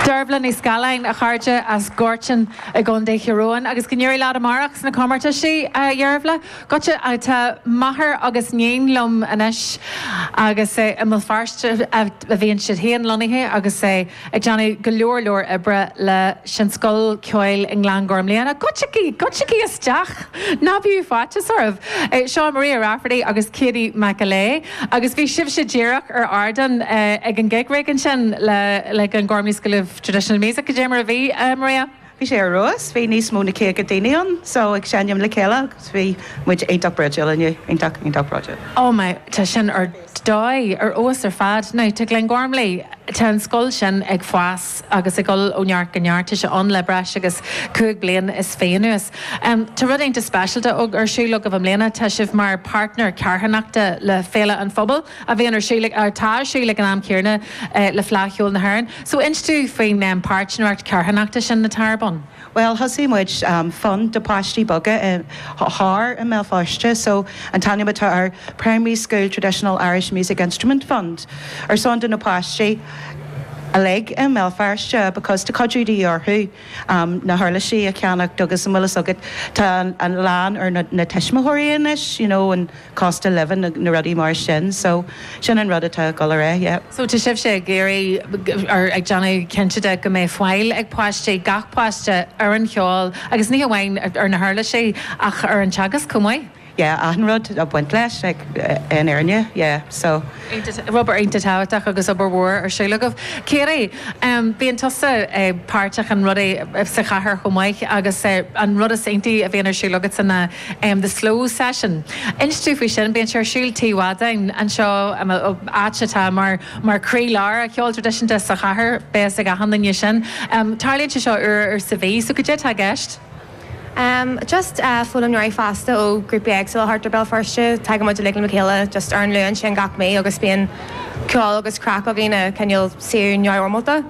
Dearbhla Ní Scaláin, a chairde as Gortin i gContae Thír Eoghain agus go n-éirí leat amárach sna comórtaisí, a Dhearbhla. Goitse tá máthair agus 'níon liom anois agus i mBéal Feirste a bhíonn siad féin lonnaithe agus ag déanamh go leor leor oibre leis an scoil ceoil i nGlengormley. Goitsígí, goitsígí isteach! Ná bíodh faitíos oraibh. Seo Maria Rafferty agus Katie McAleigh. Agus bhí sibhse díreach ar ardán ag an gig rig ansin le Glengormley School of Traditional Music, cad é mar a bhí, Maria? Bhí sé ar fheabhas, bhí níos mó na caoga daoine ann so ag seinm le chéile agus bhí muid iontach bródúil inniu, iontach, iontach broidiúil. Oh my, tá sin ar dóigh, ar fheabhas ar fad. Now tá Glengormley, tá an scoil sin ag fás. agus ag dul ó neart go neart. Tá sé ann le breis agus cúig bliana is fiche anuas. Tá rud iontach speisialta ar siúl agaibh i mbliana, tá sibh mar páirtnéir carthanachta le Féile an Phobail a bhíonn ar siúl, atá ar siúl ag an am céanna le Fleadh Cheoil na hÉireann. So inis dúinn faoin pháirtnéireacht charthanachta sin atá ar bun. Bhuel thosaigh muid fund do pháistí beaga thart i mBéal Feirste so an t-ainm atá air Primary School Traditional Irish Music Instrument Fund ar son do na páistí uilig i mBéal Feirste because tá cuidiú de dhíth orthu na huirlisí a cheannacht agus an bhfuil fhios agat tá a lán ar na tuismitheoirí anois you know and cost of living na na rudaí mar sin so sin an rud atá ag dul ar aghaidh yeah. So tá sibhse ag iarraidh or ag déanamh cinnte de go mbeidh fáil ag páistí, gach páiste, ar an cheol agus ní hamháin ar na huirlisí ach ar an teagasc chomh maith? Yeah achan rud ag baint leis like i ndáiríre yeah so. Obair iontach tábhachtach agus obair mhór ar siúl agaibh. Katie, bíonn tusa páirteach in rudaí sa chathair chomh maith agus an rud is iontaí a bhíonn ar siúl agatsa ná the slow session. Inis dúinn faoi sin. Bíonn sé ar siúl Tigh Mhadáin anseo, áit atá mar croílár an cheoil traidisiúnta sa chathair. Beidh a fhios ag achan duine sin. Tarlaíonn sé seo uair sa mhí, so cad é atá i gceist? Em, just eh foghlaimeoirí fásta ó ghrúpaí éagsúla thart ar Béal Feirste, tagann muid uilig le mo chéile just ar an Luan sin gach mí agus bíonn ceol agus craic againn, eh, cineál saor neamhfhoirmeálta.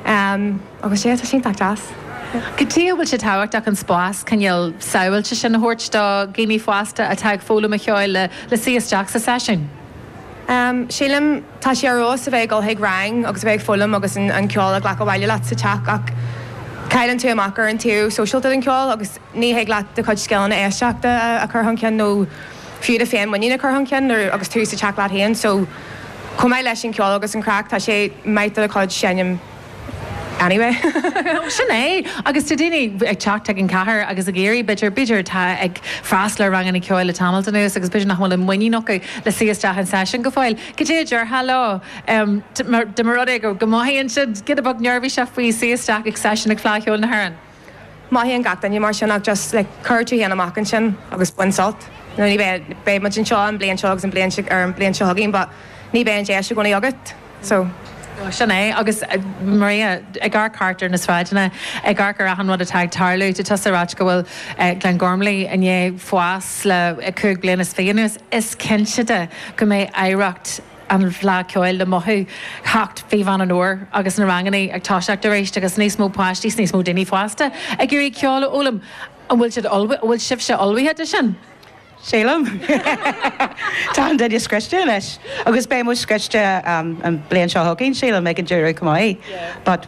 Agus sea, tá sin iontach deas. Cad chuige a bhfuil sé tábhachtach an spás, cineál, sábháilte sin a thabhairt do dhaoine fásta atá ag foghlaim an cheoil le suí isteach sa seisiún? Sílim, tá sé ar fheabhas a bheith ag dul chuig rang agus a bheith ag foghlaim agus an ceol a ghlacadh abhaile leat sa teach ach cailleann tú amach ar an taobh sóisialta den cheol agus Ní thig leat do chuid scileanna éisteachta a chur chun cinn nó fiú do féin-mhuinín a chur chun cinn nuair agus tú sa teach leat féin so chomh maith leis an cheol agus an chraic tá sé maith do do chuid seinm anyway. Sin é. Agus tá daoine ag teacht chuig an chathair agus ag iarraidh, b'fhéidir, b'fhéidir atá ag freastal ar ranganna ceoil le tamalt anuas agus b'fhéidir nach bhfuil an muinín acu le suí isteach an seisiún go fóill. Cad é a déarfá leo dá mba rud é go mothaíonn siad giota beag neirbhíseach faoi suí isteach ag seisiún ag Fleadh Cheoil na hÉireann? Mothaíonn gach duine mar sin ach just like cuir tú féin amach ansin agus bain sult you know beidh muid anseo an bhliain seo agus an bhliain ar an bhliain seo chugainn but ní bheidh an deis i gcónaí agat so sin é agus Maria ag amharc thart ar na sráideanna ag amharc ar achan rud atá ag tarlú tá tusa ag ráit go bhfuil Glengormley i ndiaidh fás le cúig bliana is fiche anuas is cinnte de go mbeidh oidhreacht an Fhleadh Cheoil le mothú theacht Mhí Mheán an Fhómhair agus na ranganna ag toiseacht arís agus níos mó páistí 's níos mó daoine fásta ag iarraidh ceol a fhoghlaim. An bhfuil sibh ullmhaithe, an bhfuil sibhse ullmhaithe do sin? Sílim. Tá achan duine scriosta anois agus beidh muid scriosta an bhliain seo chugainn, sílim, ag an deireadh chomh maith but.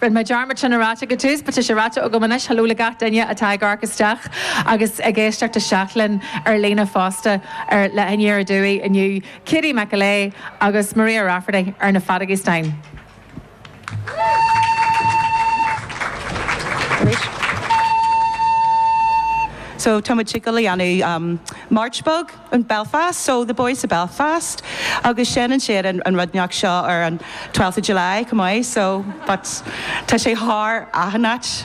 Rinne mé dearmad sin a ráit ag an tús, but tá sé ráite agam anois, hello le gach duine atá ag amharc isteach agus ag éisteacht isteach linn ar líne fosta, linn ar Aduaidh inniu, Katie McElea agus Maria Rafferty ar na feadóga stáin. So tá muid ag dul a dhéanamh march beag. in Belfast, so the boys of Belfast, agus seinneann siad an an rud ndeoch seo ar an 12th of July chomh maith, so but tá sé thar achan áit.